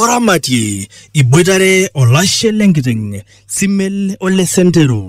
oramatie iboitare olashe lenkiteng simel ole sentero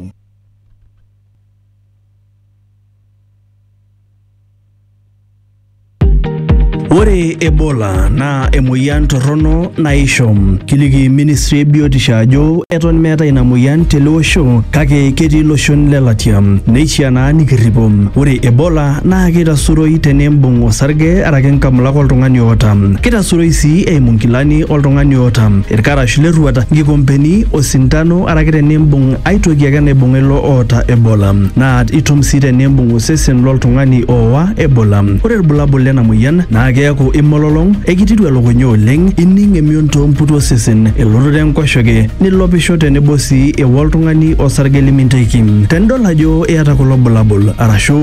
Ore Ebola naa emoyian torrono naisho. Kiliki ministry e biotisho ajo eton meetae ina moyian tele osho kake ketii iloshon le latia. Neishiaa naa nikirripo. Ore Ebola naa keitasuroi teneimbung osarge araki nkamulak oltung'ani oota. Keitasuroi sii eimu nkilani oltung'ani oota, ilkarash le rruata, nkikompeni, osintano araki teneimbung ai toki ake naibung'a ilo oota Ebola. Naa itum sii teneimbung osesen lo ltung'ani ooa Ebola. Ore ilbulabul lena moyian naa keaku imololong, eikitiru elukunya oleng, ining emion too mputi osesen, elototo enkoshoke, nilopisho tenebo sii eo oltung'ani osarge liminteiki. Tenidol ajo iyata kulo bulabul arashu